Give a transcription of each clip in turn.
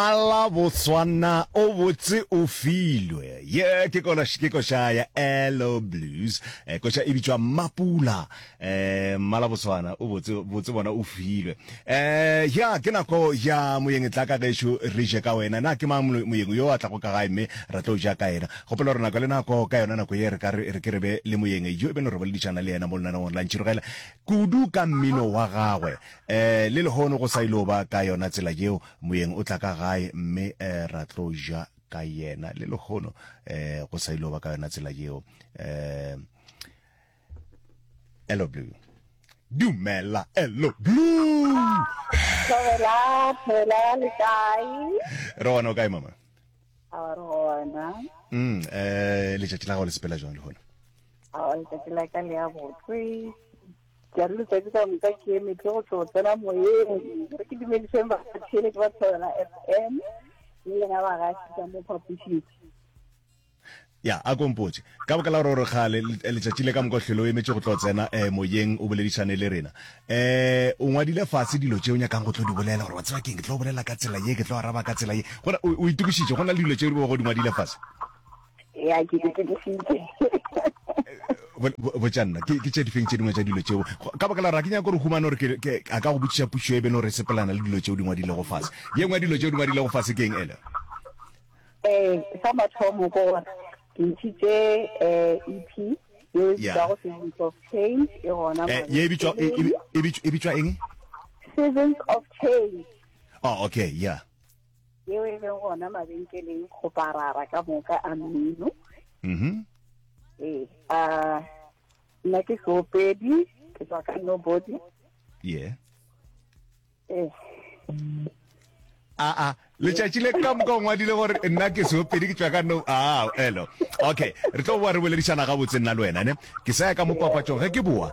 Ala Botswana o botse o filwe. Ye ke kola ke koša ya Elo Blues. Eh, koša e bitšwa Mapula. Eh, Mala Botswana o botse botse bona o filwe. Eh, ya ke nako ya moyeng tla ka gešo re je ka wena. Na ke mang molo- moyeng yo a tla go ka gae mme ra tlo ja ka yena. Kgopela gore nako le nako ka yona nako ye re ka re re ke re be le moyeng yo e be no re boledišana le yena mo lenanong la ntšhirogela kudu ka mmino wa gagwe. Eh, le lehono go sa ilo ba ka yona tsela yeo Moyeng o tla ka gae mme eh, ra tlo ja ka yena. Le lehono eh, go sa ilo ba ka yona tsela yeo. Eh, Hello Blue. Dumela Hello Blue. Thobela, thobela le kae? Re gona o kae mama? A re gona. Mm, eh, letšatši la gago le sepela jwang le gona? A letsatsi la ka le ya botswe. Ke a re letsatsi ka moka ke emetse go tlo tsena moyeng re ke dumediseng batheletši ba thobela f m le lena bagaši ka mo phapošing ya a kompotse ka boka la gore gore kgale letšatši le ka moka hlwele o emetše go tlo tsena um moyeng o boledišane le rena um o ngwadile fatshe dilo tše o nyakang go tlo di bolela gore wa tseba keng ke tlo bolela ka tsela ye ke tlo araba ka tsela ye gona o itokišitše go na le dilo tše o di ngwadile fatshe ya ke ke ke sitse botša nna ke tše difeng tše dingwe tša dilo tšeo ka baka la ra ke nyaka gore humane gore ke a ka go botšiša pušo e beno re sepelana le dilo tšeo di ngwadilego fase ye nngwe ya dilo tšeo di ngwadilego fase ke eng ele eh sa mathomo ko gore ke ntšhitše eh EP ye e bitšwa go Seasons of Change e gona eh, ye e bitšwa e, e, e bitšwa eng Seasons of Change oh okay yeah yeo e leng gona mabenkeleng go parara ka moka a mmino mm-hmm. ee a nna ke seopedi ke tswa ka nobody ye ee aa letšatši le ka moka o ngwadile gore nna ke seopedi ke tswa ka no a elo okay re tlo boa re boledišana gabotse nna le wena ne ke sa ya ka mo papatsong ge ke boa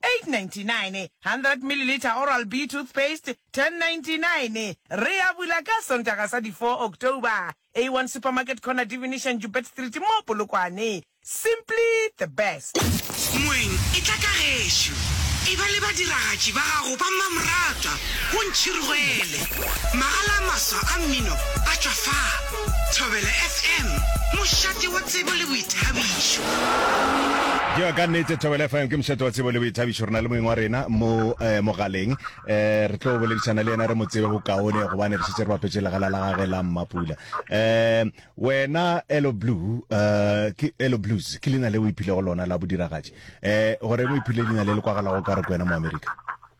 899 100 milliliter Oral-B toothpaste, 1099 Re a bula ka Sontaga sa di 4 October, A1 Supermarket Corner Divination Joubert Street mo Polokwane. Simply the best. Moeng, e tla ka gešo, e ba le badiragatši ba gago ba mmamoratwa, o ntšhirogele. Magala a maswa a mmino a tšwa fa. Thobela FM, mošate wa tsebo le boithabišo. Yo ka nnete Thobela FM ke mošate wa tsebo le boithabišo rena le moeng wa rena mo eh, mogaleng eh, re tlo boledišana le yena re mo tsebe bokaone gobane re šetse re bapetše legala la gage la mmapula eh, wena elo blue eh, ke elo blues ke leina le o iphilego lona la bodiragatši eh, gore mo iphile leina le le kwagalago ka re ko wena mo america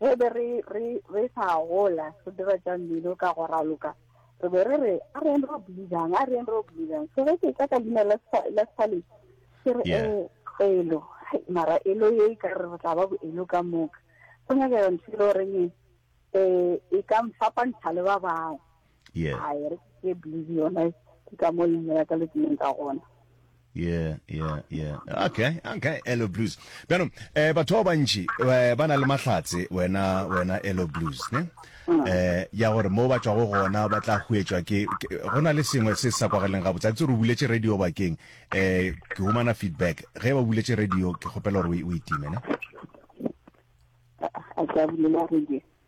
Ge be re, re, re sa gola, re dira tša mmino ka go raloka, re be re re, a reng ro believang, a reng ro believang. So ge ke tla ka leina la spa, la Spallet, ke re, Yeah. eh, elo, hai, mara elo ye e ka re re tla ba boelo ka moka. Go nyakega ntho e le goreng e, eh, e ka nfapantsha le ba bangwe. yeah a e re ke blues yona ke ka mo leina la ka le tseneng ka gona yeah yeah yeah okay okay elo blues bjano eh batho ba bantši eh, ba na le mahlatse wena wena elo blues ne mm. eh ya gore mo ba tšwago gona ba tla huetšwa ke go na le sengwe se sa kwageleng ga botsatsi re buletše radio bakeng eh ke humana feedback ge ba buletše radio ke kgopela gore o itime ne a ka bulela radio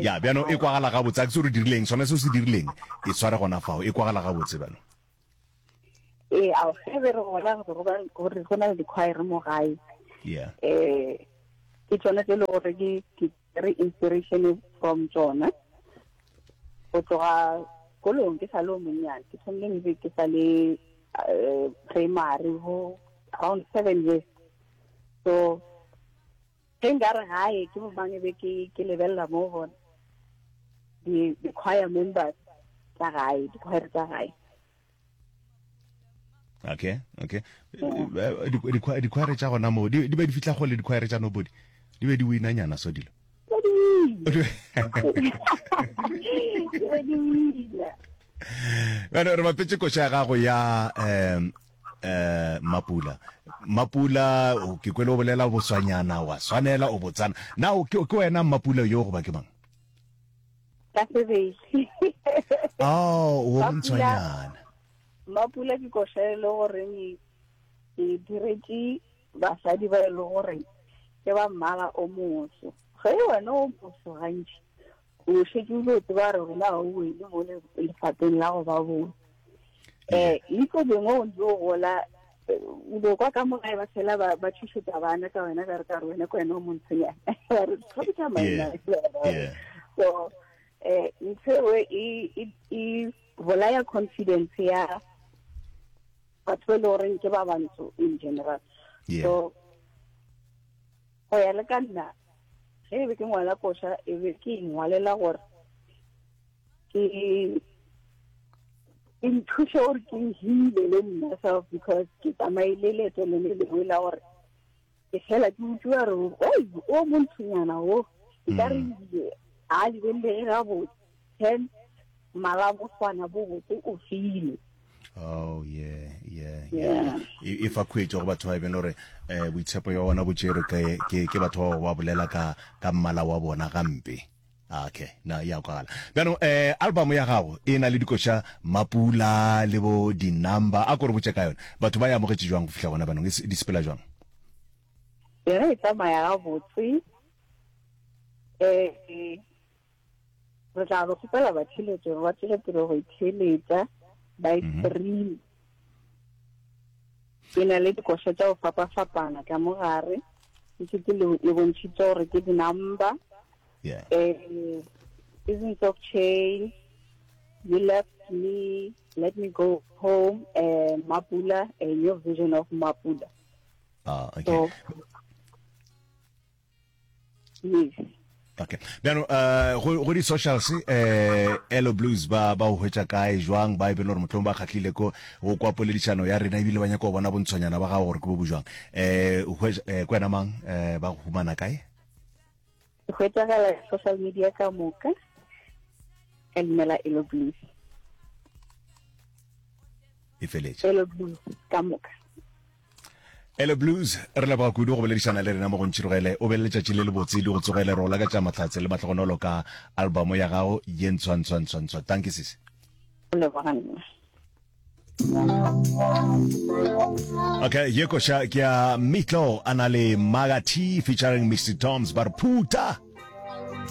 ya bjano e kwagala gabotse a ke se re dirileng sona se o se dirileng e tshware gona fao e kwagala gabotse bjano ee ao ge be re gola gore go na le dikhwaere mo gae yeah eh ke tsone tse le gore ke re inspiration from tsona go tloga kolong ke sa le o monnyane ke thomile music ke sa le eh, primary ho around seven years so Ge nka re gae ke bomang e be ke ke lebelela mo bona di di choir members tsa gae di choir tsa gae okay okay di choir tsa gona mo di be di fitla go le di choir tsa nobody di be di wina nyana so dilo bana re bapetse koša ya gago ya um Eh, Mapula. Mapula, o- ke kwele o bolela boswanyana, wa swanela, o botsana. Na o ke ke wena Mapula yo goba ke mang? ka sebedi Oh, o Mapula. bontshwanyana. mapula ke koša e le gore ne ke diretse basadi ba e le gore ke ba mmala o moso ge wena o moso gantši O šetše o dio tseba gore rona ga o wele mo lefapheng la go ba bone um itlo bengwe o ntse o gola o bo kwa ka mogae ba fela ba thušetsa bana ka wena ka re ka re wena ke wena o montshonyana re tlhokisa maina so um ntho ewe e bolaya confidence ya batho ba e le goreng ke ba bantsho in general so Go ya le ka nna, ge e be ke ngwala koša e be ke ingwalela gore ke ke nthuše gore ke hile le nna self because ke tsamaile leeto le le lengwe la gore ke fela ke utlwa re o monthonyana o ka re a lebelele gabotse Hence, Malagoswana bo botse o file. Oh yeah yeah yeah. E fa khwetšo go batho ba be lore eh boitshepo ya bona bo tšerwe ke ke ke batho ba ba bolela ka ka mmala wa bona gampe. Ah, okay na ya kwala bjano eh album ya gago e na le dikoša mapula le bo di number a kore botse ka yone batho ba ya amogetše jwang go fihla gona banong e di sepela jwang yona e tsamaya ga botse eh re tla go kgopela batheletši gore ba tswele pele go itheeletša ba e mhm. stream ke na le dikoša tša go fapa-fapana ka mo gare ke setse le bontšhitse gore ke di-number um seasons of change you left me let me go home uh, mapula a new vision of mapula ah, okay. so, yes okay bjano uh, go, go di-socials uh, eh, elo blues ba ba o hwetša kae jwang ba e bele gore motlhong ba kgatlhile ko go kwa poledišano ya rena ebile ba nyaka go bona bontshwanyana ba gago gore ke bo bo jwang um uh, uh, ko wena mang uh, ba go humana kae go hwetšagala social media ka moka ka leina la elo blues e feletše elo blues ka moka Ele Blues, re leboga kudu go boledišana le rena mo go ntšhirogele. O be le letšatši le lebotse, di go tsogele. Re o lakatša mahlatse le mahlogonolo ka albamo ya gago ye ntshwa ntshwa ntshwa ntshwa. Tanki sisi. O leboga nna. Okay, ye koša ke ya Mitlo a na le Maga T featuring Mr Toms ba re phuta.